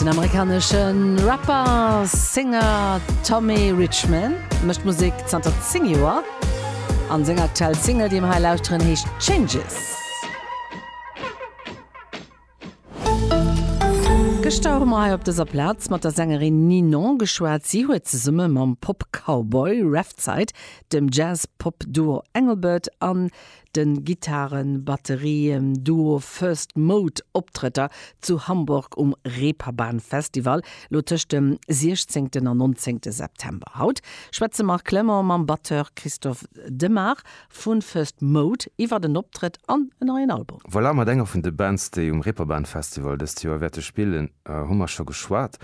Den amerikaneschen Rapper a Singer Tommy Richman mécht Musek zanter 10 Joer an seng aktuell Single déi mir hei lauschteren heescht Changes. Gëschter hu mer hei op dëser Plaz mat der Sängerin Ninon geschwat. Si huet zesumme mam Pop-Cowboy Revzite, dem Jazz-Pop-Duo Engelbert an Den Gittaren-Batterien-Duo First Mode Optrëtter zu Hamburg um Reeperbahn Festival, lo tëscht dem 16 an 19 September. Haut schwätzt de Marc Clement mam Batteur Christophe Demart vu First Mode iwwert en Optrëtt an en neien Album. Voilà, mat enger vun de Bands, déi um Reeperbahn Festival dëst Joer wäerte spillen, hu mer scho geschwat.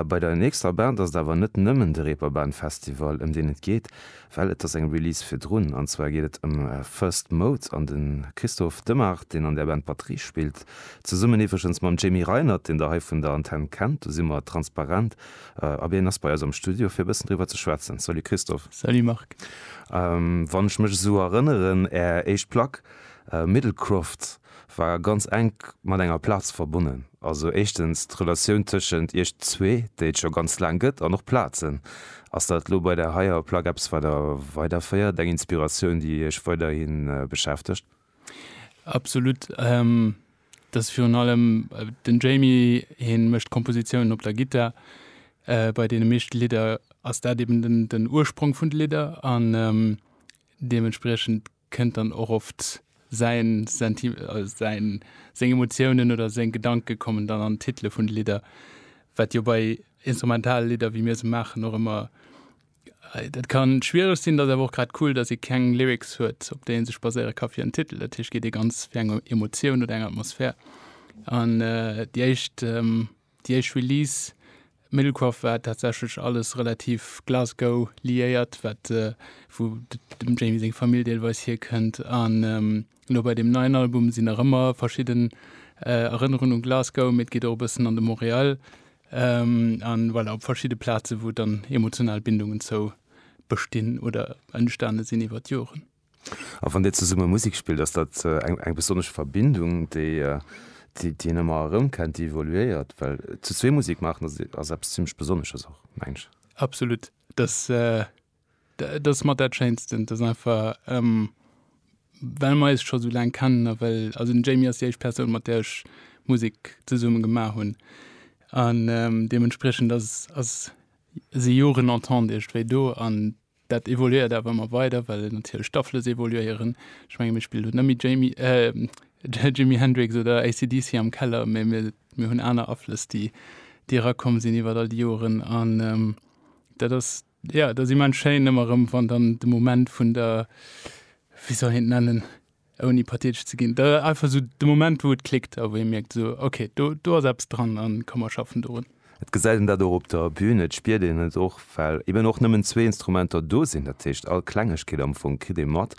Bei der nächster Band ass et awer net nëmmen de Reeperbahn Festival, ëm deen et geet. Well et ass eng Release virdrun, an zwar geet et ëm First Mode an de Christophe Demart, deen an där Band Batterie spillt, zesummen iwwregens mam Jamie Reinert, deen der hei vun der Antenn kennt. Do si mer transparent, ab een ass bei eis am Studio fir e bëssen driwwer ze schwätzen. Salut Christophe. Salut Marc. Wann ech mech esou erënneren, Är éischt Plack Middlecroft, war ganz enk mat enger Plaz verbonnen. Also éischtens d'Relatioun tëschent iech zwee, déi et scho ganz laang gëtt, an och Plazen. Ass dat elo bei där heier Plack eppes, wat der weiderféiert, eng Inspiratioun, déi iech weiderhi beschäftegt? Absolut. Dat ass virun allem den Jamie, hie mécht d'Kompositiounen op der Gittar. Bei deene meeschte Lidder ass dat eben den Ursprong vun de Lidder an deementspriechend, kënnt dann och oft säin Senti, säin, seng Emotiounen oder seng Gedanke kommen dann an d'Titele vun de Lidder, wat jo bei instrumentale Lidder, wéi mir se maachen, och ëmmer, dat ka schwiereg sinn. Dat ass awer och grad cool, datt ee keng Lyrics huet, op déi ee sech baséiere ka fir en Titel. Dat heescht, geet ee ganz fir eng Emotioun oder eng Atmosphär. An déi éischt Déi éischt Release Middlekroft war tatsächlech alles relativ Glasgow liéiert, wat wou dem Jamie seng Famill deelweis hierkënnt. An elo bei deem neien Album sinn nach ëmmer verschidden Erënnerungen un Glasgow, mee et geet och e bëssen an de Montréal a voilà op verschidde Plaze wou dann emotional Bindungen zou bestinn oder entstane sinn iwwer d'Joren. A wann Dir zesumme Musek spillt, ass dat eng besonnesch Verbindung, déi een ëmmer erëmkennt, déi evoluéiert? Well zu zwee Musek maachen ass eppes zimmlech Besonnesches och, mengen ech. Absolut. Dat ass mat dat Schéinsten. Dat ass einfach, well mer eis scho sou laang kennen a well, also den Jamie ass déi éischt Persoun, mat där ech Musek zesumme gemaach hunn an deementspriechend ass, si Joren Entente iergendwéi do an. Dat evoluéiert awer ëmmer weider, well natierlech d'Afflëss evoluéieren. Ech menge mir spillen net méi Jamie, äh, Jimi Hendrix oder AC/DC am Keller, mä mir, mir hunn aner Aflëss, déi, déi erakomm sinn iwwert all déi Joren. An ähm, dat ass, jo, dat ass immens schéin ëmmer erëm, wann dann de Moment vun der, wéi soll een et nennen? ouni pathetesch ze ginn, da einfach esou de Moment, wou et klickt a wou ee mierkt esou, ok, do, do ass eppes dran a komm mer schaffen dorun. Et gesäit een dat och op der Bün, et spiert een et och, well eben och nëmmen zwee Instrumenter do sinn. Dat heescht, all Klengegkeet am Fong kritt ee mat,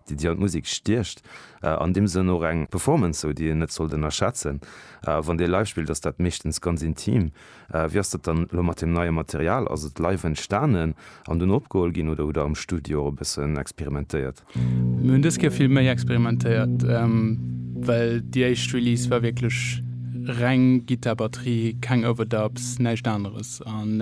déi déi an d'Musek stiecht. An deem Sënn och eng Performance, esou, déi een net sollt ënnerschätzen. A wann Dir live spillt, ass dat meeschtens ganz intim. Wéi ass dat dann elo mat deem neie Material? Ass et live entstanen an dunn opgeholl ginn oder hutt Der am Studio och e bëssen experimentéiert? Mir hunn dës Kéier vill méi experimentéiert, well déi éischt Release war wierklech reng Gittar-Batterie, keng Overdubs, näischt aneres.